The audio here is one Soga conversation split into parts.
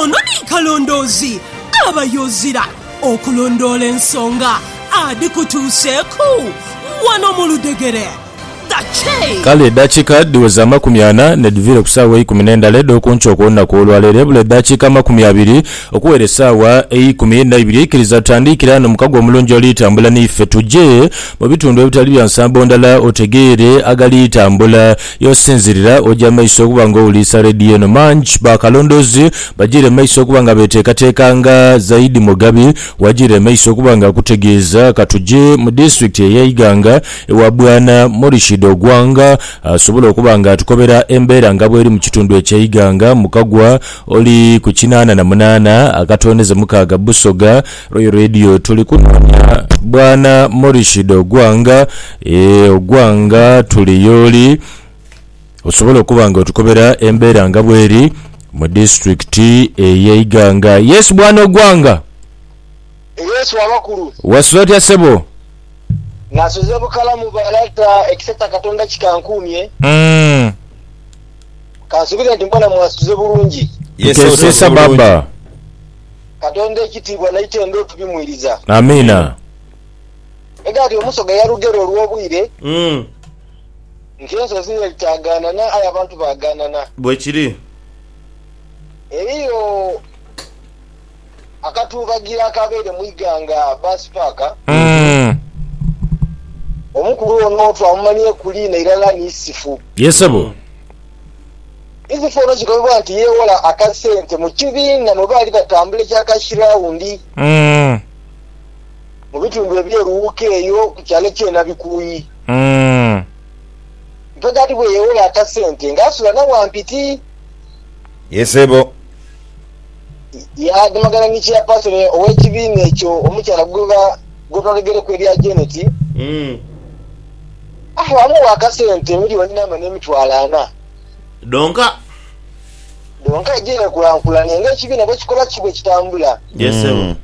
Ono ni kalondoozi aba yozira okulondoola ensonga adhikutuuseeku wano mu ludhegere. The Che. Kale edhakiika dhiweze amakumi ana nedhiviire ku saawa eikumi n'endhala edh'okunkyo okw'olunaku olwaleero. Ebula edhakiika amakumi abiri okuwera esaawa eikumi naibiri. Ikiriza tutandiikire ano mukago omulungi oli tambula naife tuje mu bitundu ebitali bya nsambo ndhala otegeere agali tambula. Yo sinzirira oje amaiso okuba nga owuliisa leediyo eno. Mangi baakalondoozi bajiire mu maiso okuba nga beeteekateeka nga Zaidi Mugabi w'ajiira emaiso okuba nga akutegeeza. Ka tuje mu disitulikiti eya Iganga ewa Bwana Morishid Ogwang asobole okuba nga atukobera embeera nga bweri mu kitundu ekye Iganga mu kagwa oli ku kinaana na munaana akatooneze mukaaga Busoga. Royal Radio tuli kunoonya Bwana Morishid Ogwang. Eeh ogwa nga tuli yooli osobola okuba nga otukobera embeera nga bweri mu disitulikiti eye Iganga. Yes bwana Ogwanga. Yes wabakulu. Wasuze otya ssebo? Nasuze bukalamu balata ekisa kya katonda kikankuumye. Umm. Kansubire nti mbona mwasuze bulungi. Tukeesesa baba. Katonda ekitiibwa naitendo tubimwiriza. Amiina. Ega ati omusoga yalugera olw'obwire nti ensozi n'edhitaaganana aye abantu baaganana. Bwekiri. Eriyo akatuubagiro akaabaire mu Iganga Bus Park. Omukulu ono twamumanhieku liina irala ni Isifu. Ye sebo. Isifu ono kigambibwa nti yeewola akasente mu kibiina mwe baali batambula ekya Cash Round. mu bitundu eby'eruwuuka eyo ku kyalo eky'e Nabikuuyi. Mpegadi bwe yeewola aka sente ng'asula na Wampiti. Ye ssebo. Yaadimagana ni Chairperson ow'ekibiina ekyo omukyala gwe twagegereku erya Janet, awo amuwa aka sente miliyoni n'ama n'emitwalo ana. Dhonka. Donka eje yekulankulane nga ekibiina bwekikola kiki bwekitambula. Yes sebo.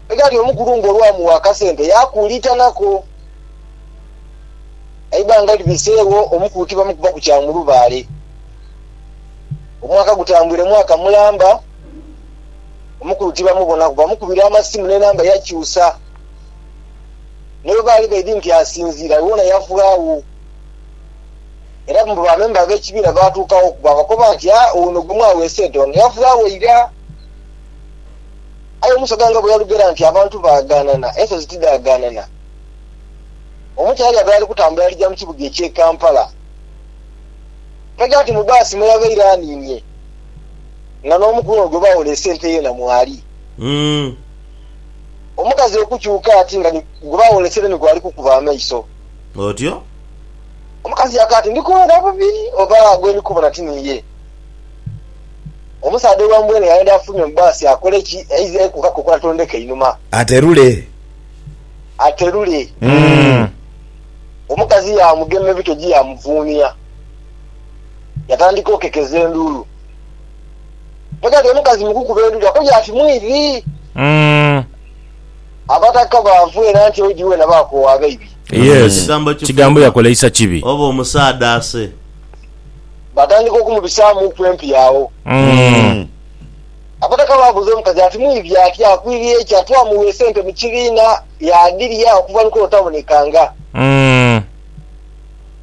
Egali omukulu nga olwamuwa akasente yakuuliitanako. Eibanga libiseegho omukulu tibamukuba ku kya mulubaale. Omwaka gutambwire mwaka mulamba, omukulu tibamubonaku. Bamukubira amasimu n'enamba yakyusa. Ni bwebaali baidhi nti asinziira, wona yavaawo. Era mbu bamemba ab'ekibiina baatuuka oku baabakoba nti, Ha, ono gwe mwaweesa ente ono yaava agho ira? Aye omusaga nga bwe yalugera nti abantu baagaanana, ensozi tidhagaanana. Omukyala yali abaire ali kutambula alija mu kibuga eky'e Kampala. Twaja ati mu bbaasi mwe yabaire aniinye nga n'omukulu ono gwe baawoleesa ente yeena mwali. Omukazi okukyuka ati nga ni gwe baawoleesere ni gwali kukuba amaiso. Otyo? Omukazi yakoba ati, Ndi kuwona bubi, oba gwe ndi kubona ti niye? Omusaadha owa mbwene yaghenda yafulumya mu bbaasi akole ki? Yaiza yekuuka ku kola tondeka einhuma. Aterule. Aterule. Omukazi yaamugema ebitogi yaamuvuunia. Yatandika okekeza enduulu. Ghazira omukazi mu kukuba enduulu yakoja ati, Mwidhi! Abataka baavu era nti oidhi weena baakoowa abaibi. Yes, kigambo yakoleisa kibi. Oba omusaadha ase. Batandika okumubisaamuuku empi agho. Abataka baabuuza omukazi ati mwibi atya, akwiriye ki? Atwamugha esente mu kibiina yaadhirya okuva ni kuno tabonekanga.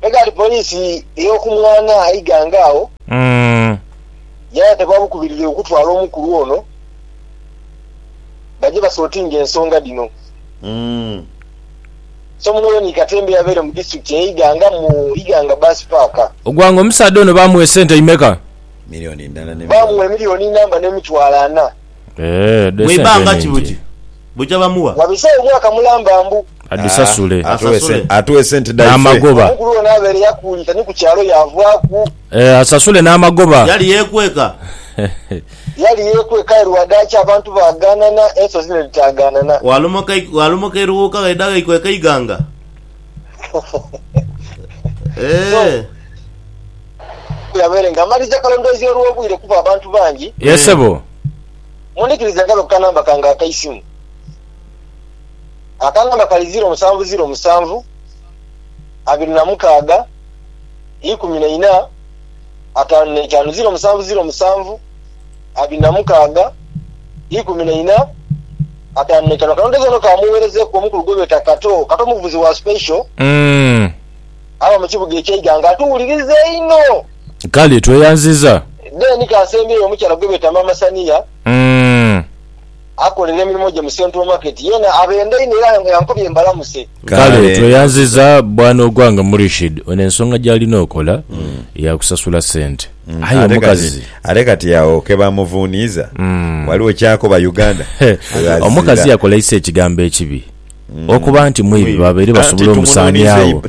Megali poliisi ey'oku mwaana Iganga agho yaayeta ba bukubirire okutwala omukulu ono. baje basotinge ensonga dhino. Somuno Ronnie Katemba eyabaire mu disitulikiti eye Iganga mu Iganga Bus Park. Ogwanga omusaadha ono baamuwa esente imeka? Baamuwa emiliyoni inamba n'emitwalo ana. Mu ibanga ki buti buja bamuwa? Wabisewo mwaka mulamba mbu. Adhisasule. N'amagoba. Omukulu ono abaire yakuulita ni ku kyalo yaavaaku. Asasule n'amagoba. Yali yeekweka. Yali yeekweka aye lwa dhaaki abantu baagaanana, ensozi ne dhitaagaanana. Waalomoka eruwuuka ghaidha ghaikweka eighanga. Eeh. Yabaire nga amaliza kalondoozi olw'obwire kuba abantu bangi. Yee sebo. Mundhikirize ngabe ku kanamba kange akaisimu. Akanamba kali ziro musanvu ziro musanvu abiri na mukaaga ikumi na ina. ataanu n'eitaanu ziiro musanvu ziiro musanvu abiri na mukaaga ikumi na ina ataanu n'eitaanu. Akanhondezo kano kaamugheerezeeku omukulu gwe beeta Kato, Kato muvuzi wa Special aba mu kibuga eky'e Iganga atuwuliriza einho. Kale tweyanziza. Then kaasembyeyo omukyala gwe beeta Maama Saniya. Akolera emirimo gye mu Central Market yeena abenda inho era yankobye mbalamuse. Kale tweyanziza bwana ogwange Murishid ono ensonga gyalina okola yakusasula sente aye omukazi. Ate kati agho kebamuvuniiza ghaligho kyakoba Uganda ghebaziira. Omukazi yakoleisa ekigambo ekibi okuba nti mwibi babaire basobola omusaaniagho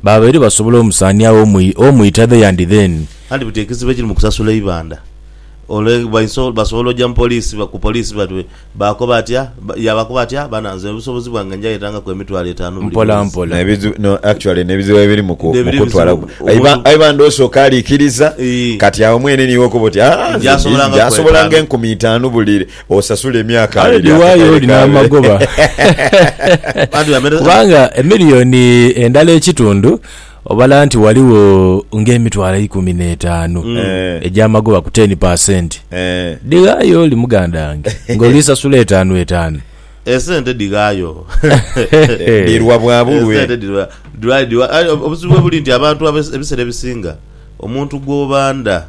babaire basobola omusaaniagho omwita the and then. Anti buti ekizibu ekiri mu kusasula eibanda. Ole baiso basobola oja mu poliisi ba ku poliisi bati baakoba atya ba, yaabakoba atya? Bana, nze obusobozi bwange nja yetangaku emitwalo etaanu buli Mpola mwezi. mpola. N'ebizibu, no, actually n'ebizibu ebiri mu ku, mu N'ebiri kutwala ebizibu, ku. Aye ba, omuntu- aye bande osooka alikiriza, Ii. kati agho mwene niiwe okoba oti, aa, nze Nja sobola ndi, nga nja ku sobola nga etaanu. enkumi itaanu buli, osasule emyaka Kale abiri. dhiwayo akakaire olina kaabe. amagoba Bantu bamere- kubanga emiliyoni endala ekitundu Obala nti ghaligho ng'emitwalo eikumi n'etaanu egy'amagoba ku teni pasenti. Dhighaayo oli muganda wange ng'oli sasula etaanu etaanu. Esente dhighaayo. Dhirwa bwa bulwe. Esente dhirwa, dhirwa, dhirwa. Aye obuzibu buli nti abantu ebiseera ebisinga omuntu gw'obanda.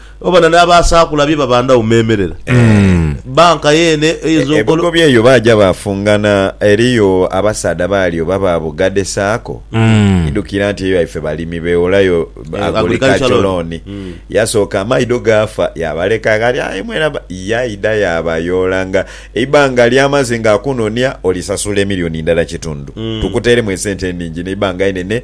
Oba na n'abaasaakula bye babandagho meemerera. Bbanka yeene eyinza okola. Ebigobi eyo baaja baafungana eriyo abasaadha baali oba ba Bugade Sacco. Idhukira nti eyo yaife balimi begholayo agriculture loan. Yasooka amaidho gaafa yaabaleka ghali aye mwena yaidha yaabayoola nga eibanga ly'amaze ng'akunonia olisasula emilioni ndala kitundu tukuteeremu esente enhingi n'eibanga einene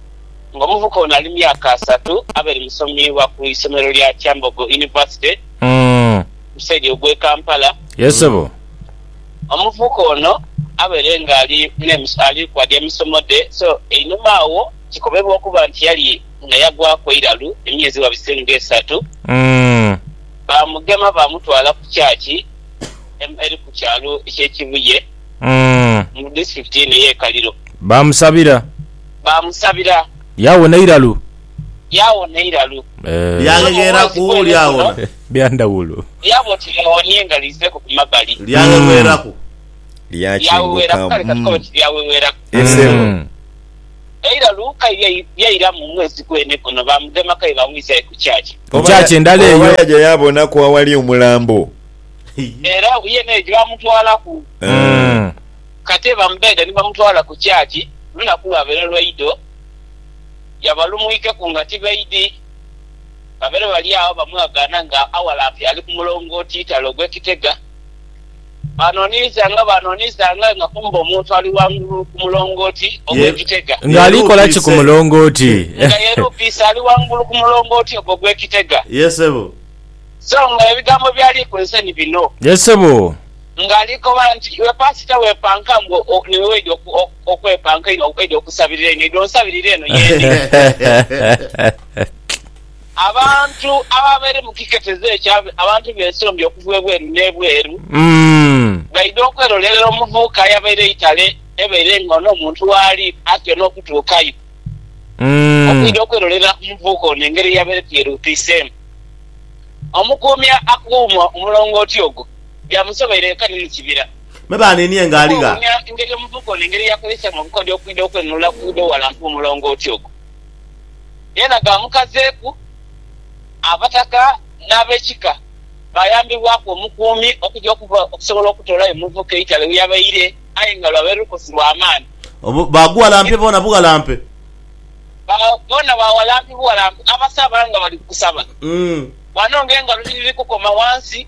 ng'omuvuka ono ali myaka asatu abe ni musomi wa ku isomero lya Kyambogo University mu saidi ogw'e Kampala. Omuvuka ono abaire nga ali ali kwadi emisomo dhe so einhuma agho kikobebwa okuba nti yali nga yagwaku eiralu emyezi wabise nga esatu baamugema baamutwala ku kyaki eri ku kyalo eky'e Kibuye mu disitulikiti eno ey'e Kaliro. Baamusabira. baamusabira. Yaawona iralu. Yaawona iralu. Eeh. Lyaghegheraku, lyaawona. Bya ndhawulo. Lyaba oti lyawonie nga liizeeku ku mabbali. Lyaghegheraku. Lyaweweeraku, kale ka tukobe nti lyaweweeraku. Esebo. Eiralu kairya lyairamu mu mwezi gwene guno, baamugema kaye baamwisa aye ku kyakya. Ku kyakya endala eyo. Oba yaja yaabonaku awali omulambo. Era yene eyo gye baamutwalaku. Eeh. Kate bamudhaidha ni bamutwala ku kyaki, lunaku lwabeera lwa idho, yaba lumwiikeku nga tibaidhi. Babeere bali agho bamwagaana nga awalampi ali ku mulongooti itale ogw'ekitega. Baanooniiza nga baanooniiza ng'aye nga kumbe omuntu ali ghangulu ku mulongooti ogw'ekitega. Ng'ali kola ki ku mulongooti? Nga yeeruupiise ali ghangulu ku mulongooti ogwo ogw'ekitega. Ye sebo. So nga ebigambo by'ali kunse ni bino. Ye sebo. Nga ali kukobala nti, Iwe Paasita weepanka mbu niwe weidha okwepanka einho, weidha okusabirira einho, idha onsabirire eno y'eri. Abantu ababaire mu kiketezo ekyo, abantu b'ensombi okuva ebweru n'ebweru, baidha okwerolerera omuvubuka ayabaire eitale ebaire nga ono omuntu waali atyo n'okutuukayo, okwidha okwerolerera ku muvubuka ono engeri eyabaireku yeruutiiseemu. Omukuumi akuuma omulongooti ogwo. byamusoboire yekka ni mu kibira. Me baaniinie nga ali gha. Okwewuunya engeri omuvubuka ono engeri y'akozesamu obukodyo okwidha okwenunula ku idho ghalampu mu mulongooti ogwo, yena gaamukazeeku. Abataka n'abekika baayambibwaku omukuumi okuja okuva okusobola okutoolayo omuvubuka eitale we yabaire aye nga lwaba lukosi lwa maani. Obu baaguwalampye boona buwalampe. Ba boona bawalampe buwalampe, abasaba nga bali kusaba. Ghano ng'engalo dhiri dhiri kukoma ghansi.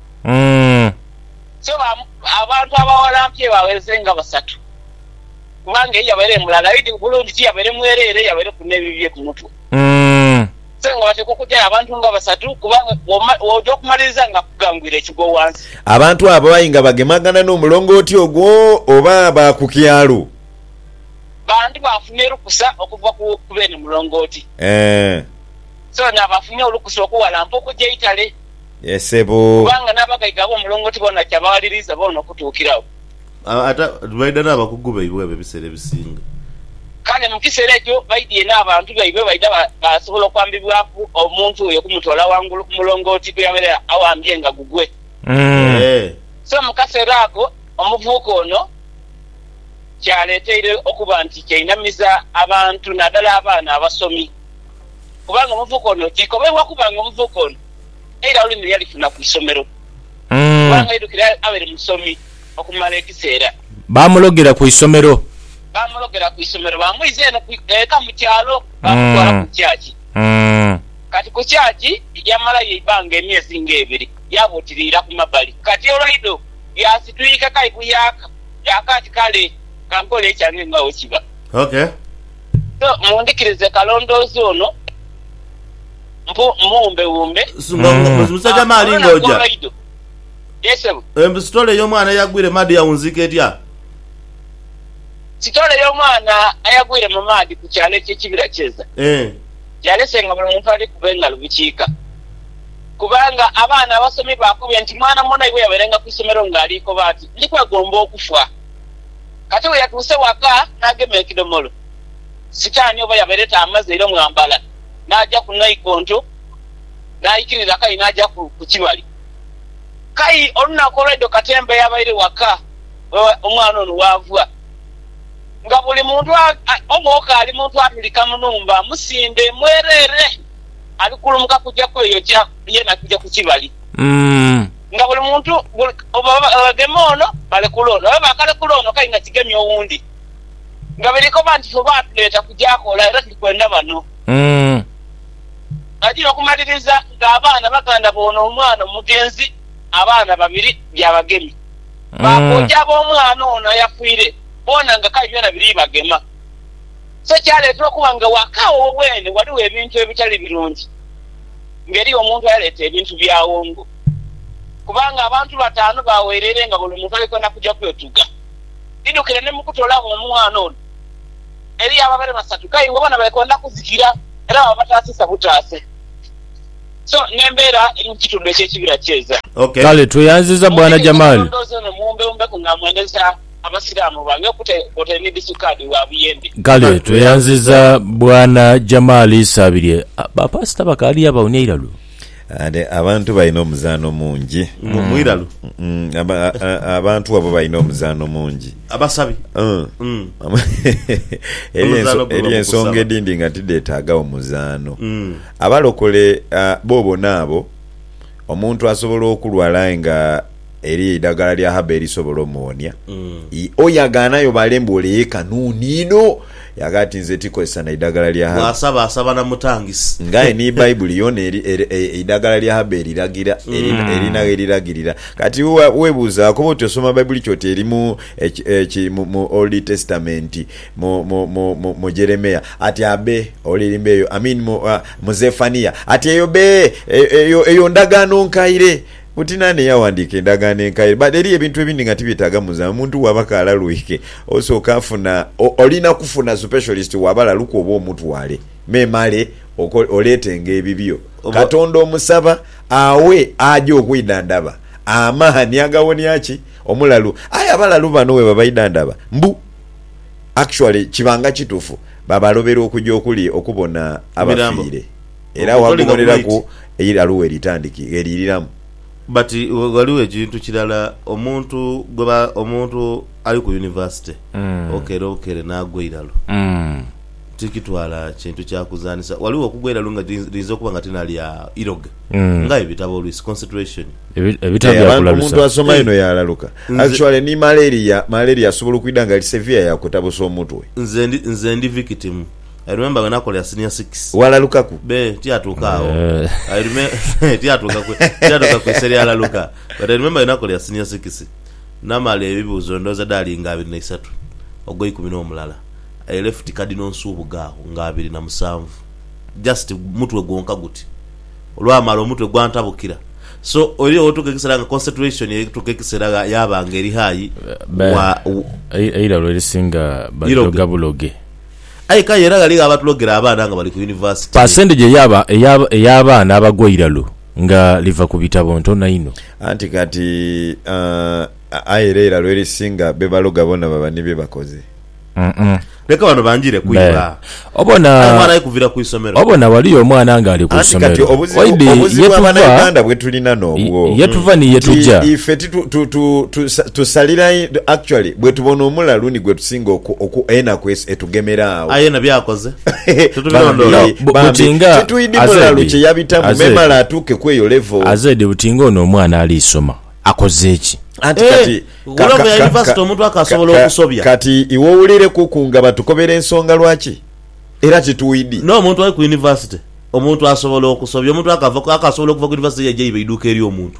Umm. So abantu abawalampye bagheze nga basatu kubanga ye yabaire mulala aye di bulungi tiyabaire mwerere yabaireku nebibye kumutwe. Umm. So nga batekwa okujayo abantu nga basatu kubanga bwoja okumaliriza nga akugangwire ekigwo wansi. Abantu abo aye nga bagemagana n'omulongooti ogwo oba ba ku kyalo? Bantu baafuna erukusa okuva ku beene mulongooti. Eeh. So naabafunye olukusa okuwalampa okuja eitale. Yee sebo. Kubanga n'abagaiga ab'omulongooti boona kyabawaliriiza boona okutuukiragho. Ate baidha n'abakugu baibwe abo ebiseera ebisinga. Kale mu kiseera ekyo baidhie n'abantu baibwe baidha baasobola okwambibwaku omuntu oyo okumutoola ghangulu ku mulongooti kwe yabaire aghambye nga gugwe. Yee. So mu kaseera ako omuvubuka ono kyaleeteire okuba nti kyainamiza abantu naadala abaana abasomi. Kubanga omuvubuka ono, kikobeibwa okuba nga omuvubuka ono Eira olulimi yalifuna ku isomero kubanga aidukira abaire musomi okumala ekiseera. Baamulogera ku isomero. Baamulogera ku isomero. Baamwiza eno eka mu kyalo baamutwala ku kyaki. Kati ku kyaki yamalayo eibanga emyezi ng'ebiri yaaba oti liira ku mabali. Kati olwa idho yaasitwika kai kuyaaka, yaaka ati, Kale ka nkole ekyange nga bwe kiba. So mundhikirize kalondoozi ono. mpu mmuwumbewumbe. Mbu musajja maali nga oja. Mbu sitole y'omwana eyagwire mu maadhi yawunziika etya? Sitole y'omwana ayagwire mu maadhi ku kyalo eky'ekibira Kyeza yalese nga buli muntu ali kuba engalo bikiika kubanga abaana abasomi baakubye nti mwana munaibwe eyabairenga ku isomero ng'ali koba ati, Ndi kwegomba okufa. Kati bwe yatuuse waka n'agema ekidhomolo, sitaani oba yabaire taamaze ira mwambala. n'aja ku naikonto, n'aikiriza Kayi n'aja ku kibali. Kayi olunaku olwaidho katemba yabaire waka we omwana ono waava, nga buli muntu omwoka ali muntu atulika mu nhumba musimbe mwereere, ali kulumuka kuja kweyokya yeena kuja ku kibali. Nga buli muntu, buli, bwebagema ono balekula ono, bwebaba bakalekula ono Kayi nga kigemye owundi. nga benekoba nti ffe baatuleeta kuja kola era tuli kwenda bano. Nga gino okumaliriza nga abaana baganda b'ono omwana omugenzi abaana babiri byabagemi. Bakooja ab'omwana ono ayafiire boona nga kale byona biri bagema. So kyaleetera okuba nga waka awo weene waliwo ebintu ebitali birungi nga eriyo omuntu ayaleeta ebintu byawongo kubanga abantu bataanu bawereire nga buli muntu ali kwenda kuja kwetuga. Ndidhukira ni mu kutoolagho omwana ono eri abo abaire basatu, aye nga bona beekoonda kuzikira era baba bataasiisa butaase. So, n'embeera eri mu kitundu eky'ekibira kyeza. Kale tweyanziza Bwana Jamal. Kale tweyanziza Bwana Jamal Isabirye. Ba Pasita bakaali agho bawunya eiraluro. Ate abantu balina omuzaano mungi. Mu- mwiralu. Mm, aba- a- a- abantu abo balina omuzaano mungi. Abasabi. Mm. Mm. Eriyo enso- Omuzaano gwe eriyo ensonga bamukusaba. edindi nga tidhetaagagho muzaano. Mm. Abalokole ah, bo bona abo, omuntu asobola okulwala aye nga Eriyo eidagala lya haba erisobola omuwonia? I. O ya gaana yo baale mbu ole yeka nuuni inho. Yagha ati, Nze ti kozesa na idagala lya haba. Bw'asaba asaba na mutangisi. Ng'aye ni Baibuli yoona eri, eri, e, eidagala lya haba eriragira, eri, erina ghe liragirira. Kati iwe wa, weebuuzaaku oba oti osoma Baibuli ki oti eri mu, eki, eki, mu, mu Oldi Tesitamenti, mu, mu, mu, mu, mu Jeremia. Ati, Abe, ole eri mbeeyo, I mean mu, a, mu Zefania. Ati, Eyo be, e, eyo, eyo ndagaano nkaire. Buti naani eyawandiika Endagaano Enkaire? But eriyo ebintu ebindi nga tibyetaaga muzamu. Omuntu waba kaalaluike, osooka afuna, olina kufuna supesholist wa balalu kwoba omutwale memale oleetenga ebibyo. Katonda omusaba aghe aja okwidhandhaba amaani agawonia ki? Omulalu. Aye abalalu bano bwebabaidhandhaba mbu actually kibanga kitufu, babalobera okuja okuli okubona abafiire. Era waaguboneraku eilalu we litandiki, ghe liiriramu. But ghaligho ekintu kirala omuntu gweba omuntu ali ku university okeera obukeere naagwa eilalu tikitwala kintu kya kuzanhisa. Ghaligho okugwa eilalu nga liyinza okuba nga ti na lya iroga nga aye bitaba oluisi concentration. Eeh abantu omuntu asoma inho yaalaluka. Actually ni malaria, malaria asobola okwidha nga ali severe yaakutabusa omutwe. Nze ndi nze ndi victim. I remember when akolera senior six. Walalukaku? Be tiyatuuka agho. I reme tiyatuuka ku tiyatuuka ku ise lyalaluka. But I remember when akolera senior six namala ebibuuzo ndowooza dhaali nga abiri na isatu ogwa ikumi n'omulala I left Cardinal Nsubuga agho nga abiri na musanvu just mutwe gwonka guti. Olwamala omutwe gwantabukira. So eriyo wotuuka ekiseera nga concentration etuuka ekiseera gha yaaba nga eri high Ba wa. ei eiralwa erisinga Iroge. badhoga buloge. Aye k'aye era ghaligho abatulogera abaana nga bali ku yunivasite. Pasendege ey'abaana abagwa eiralo nga liva ku bitabo ntono inho. Anti kati, aye era eiralo erisinga be baloga boona baba ni bye bakoze. Leka bano banjire ku iba. Aye omwana aye kuvira ku isomero. Obona ghaliyo omwana ng'ali ku isomero. Oidhi ye tuva ni ye tuja. Singa oku, oku, enaku es, etugemera agho. Aye na byakoze tetubirondoola. Bambi, Bu- bambi, butinga titwidi azedi, mulalu kye yabitamu, azedi. memale atuuke ku eyo level. Azedi buti nga ono omwana ali soma akoze ki? Anti Eh, kati ku ka- level ka- ya ka- university ka- omuntu akasobola ka- ka- okusobya. Kati iwe owulireku-ku nga batukobera ensonga lwaki? Era titwidi. N'omuntu ali ku university, omuntu asobola okusobya. Omuntu akava, akasobola okuva ku university yaja iba eiduuka ery'omuntu.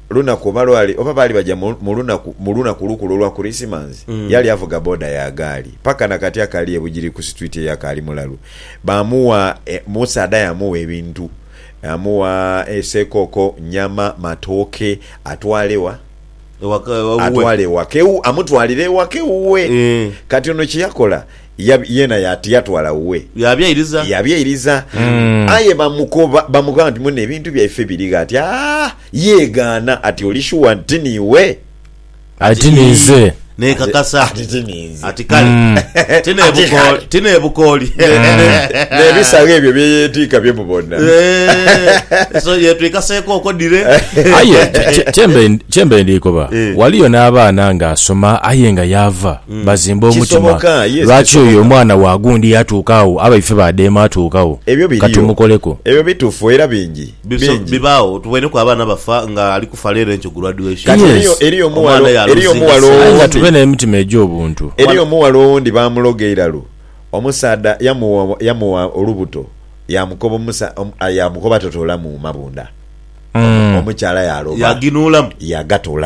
lunaku oba lwali oba baali baja mu mu lunaku mu lunaku olukulu olwa Kurisimansi, yali avuga boda ya gaali. Paka na kati akali e Bugiri ku situiti eyo akaali mulalu. Baamugha e, omusaadha yaamugha ebintu. Yaamugha e, sekooko, nyama, matooke, atwale wa? Ewaka, ewuwe. Atwale ewaka ewu, amutwalire ewaka ewuwe. Eeh. Kati ono kye yakola, yab- yeena ya- tiyatwala wuwe, Yabyairiza. yabyairiza. Aye bamukoba bamugamba nti, Muno ebintu byaife biri gha? Ati, Aa! Yeegaana ati, Oli shuwa nti ti niiwe? Ati ti ninze. Nekakasa. Ati ti ninze. Ati kale. Ti nebukooli. Ti nebukooli. N'ebisagho ebyo bye yeetiika bye mubona. Eh, So yetwikaseeko okwo dire. Aye kye- kye- kyembe- kyembe ndikoba Eh. waliyo n'abaana ng'asoma aye nga yaava bazimba omutima, lwaki oyo omwana wa gundi yatuuka agho abaife ba dheema atuuka agho? Ebyo Ka biriyo. tumukoleku. Ebyo bituufu era bingi. Biso, Bingi. bibaagho. Tuboineku abaana bafa nga ali kufa leero enkyo graduation. Kati Yes. eriyo, eriyo Omwana omughala, ya eriyo losing omughala esente. Aye nga owundi, tube n'emitima egy'obuntu. eriyo omughala owundi baamuloga eiralu, omusaadha yamugha, yamugha olubuto, yaamukoba omusa, omu, a, yaamukoba totoolamu mabunda. Omu, Mm. omukyala yaaloba, Yaginuulamu. yagatoolamu.